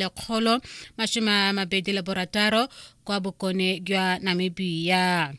lekgolo masome a mabedi le borataro kwa bokone jwa namibia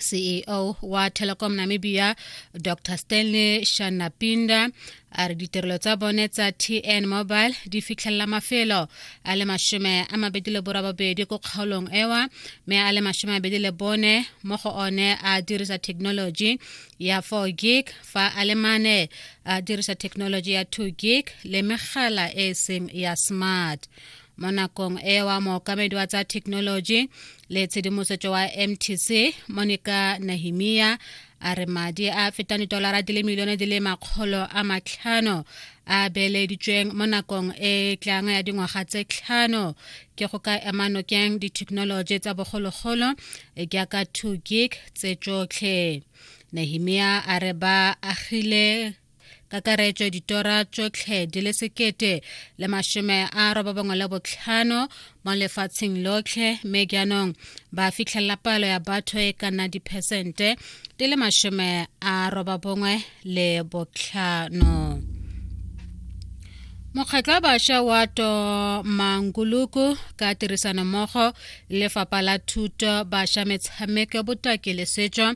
ceo wa telecom namibia dr stanley shanapinda a re ditirelo tsa bone tsa tn mobile di fitlhelela mafelo a le masome a mabedi le borababedi ko kgaolong ewa mme a le masome a mabedi le bone mo go one a dirisa thekenoloji ya 4 gig fa a le mane a dirisa thekenoloji ya 2 gig le megala e e seng ya smart mo nakong e wa mookamedi wa tsa thekenoloji le tshedimosetso wa mtc monica nahimia a re madi a fetang ditolara di le milione di le makgolo a matlhano a beeleditsweng mo nakong e tlang ya dingwaga tse tlhano ke go ka ema nokeng dithekenoloji tsa bogologolo jaaka 2 gig tse tsotlhe nehemia a re ba agile kakaretso ditora tsotlhe di le sekete le mashome a robabongwe le botlhano mo lefatsheng lotlhe mme jaanong ba fitlhelela palo ya batho e ka nna diphesente di le mashome a robabongwe le botlhano mokgatlho wa bašwa wa to manguluku ka tirisanommogo lefapha la thuto bašwa metshameko botaki le setšo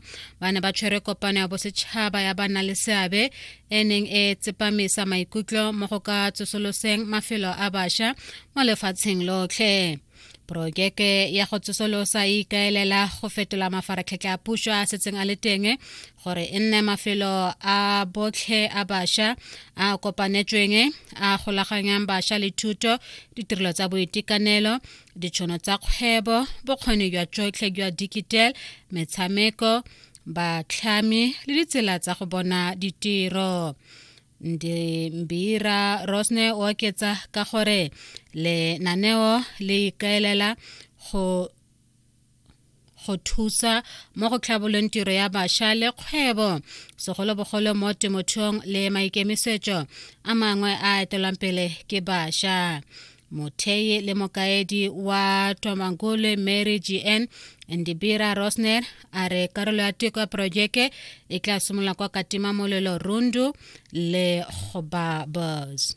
ba ne ba tshwere kopano ya bosetšhaba ya ba na le seabe e neng e tsepamisa maikutlo mo go ka tsosoloseng mafelo a bašwa mo lefatsheng lotlhe porojeke ya go tsosolosa e ikaelela go fetola mafaratlhatlha a puso a setseng a le teng gore e nne mafelo a botlhe a bašwa a kopanetsweng a golaganyang bašwa le thuto ditirelo tsa boitekanelo ditšhono tsa kgwebo bokgoni jwa tsotlhe jwa digital metshameko batlhami le ditsela tsa go bona ditiro mbira rosne o oketsa ka gore lenaneo le ikaelela go go thusa mo go tlhabolong tiro ya bašwa le kgwebo segolobogolo mo temothuong le maikemisetso a mangwe a etelwang pele ke bašwa mothei le mokaedi wa tomangole mary gn ndibira rosner a re karolo ya teko ya porojeke e tla simolola kwa katima molelo rundu le goba bos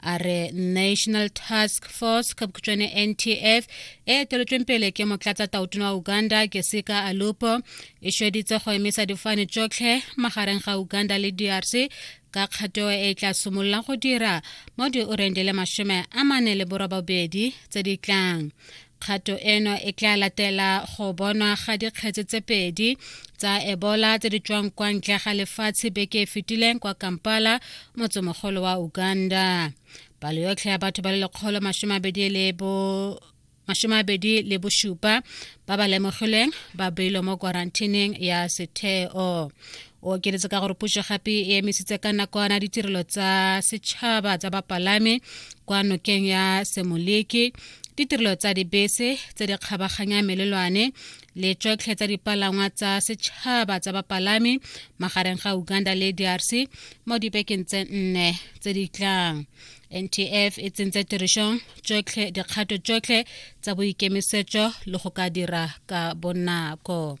a re national task force ka bokhutšwane ntf e eteletsweng pele ke motlatsa tautona wa uganda ke sika alupo e šeditse go emisa difane tšotlhe magareng ga uganda le drc ka kgato e tla simolola go dira mo dioreng di le masome a mane le borobabedi tse di tlang kgato eno e tla latela go bonwa ga dikgetse tse pedi tsa ebola tse di tswang kwa ntle ga lefatshe beke e fetileng kwa kampala motsemogolo wa uganda palo yotlhe ya batho ba le lekgolo masome abedi le bo masome abedi le bosupa ba ba lemogilweng ba beilwe mo kwarantineng ya setheo o okeletse ka gore puso gape e emisitse ka nakwana ditirelo tsa setšhaba tsa bapalami kwa nokeng ya semoleke ditirelo tsa dibese tse di kgabaganya melelwane le tšotlhe tsa dipalangwa tsa setšhaba tsa bapalami magareng ga uganda le drc mo dibekeng tse nne tse di tlang ntf e tsentse tirišong tšotlhe dikgato tšotlhe tsa boikemisetšo le go ka dira ka bonako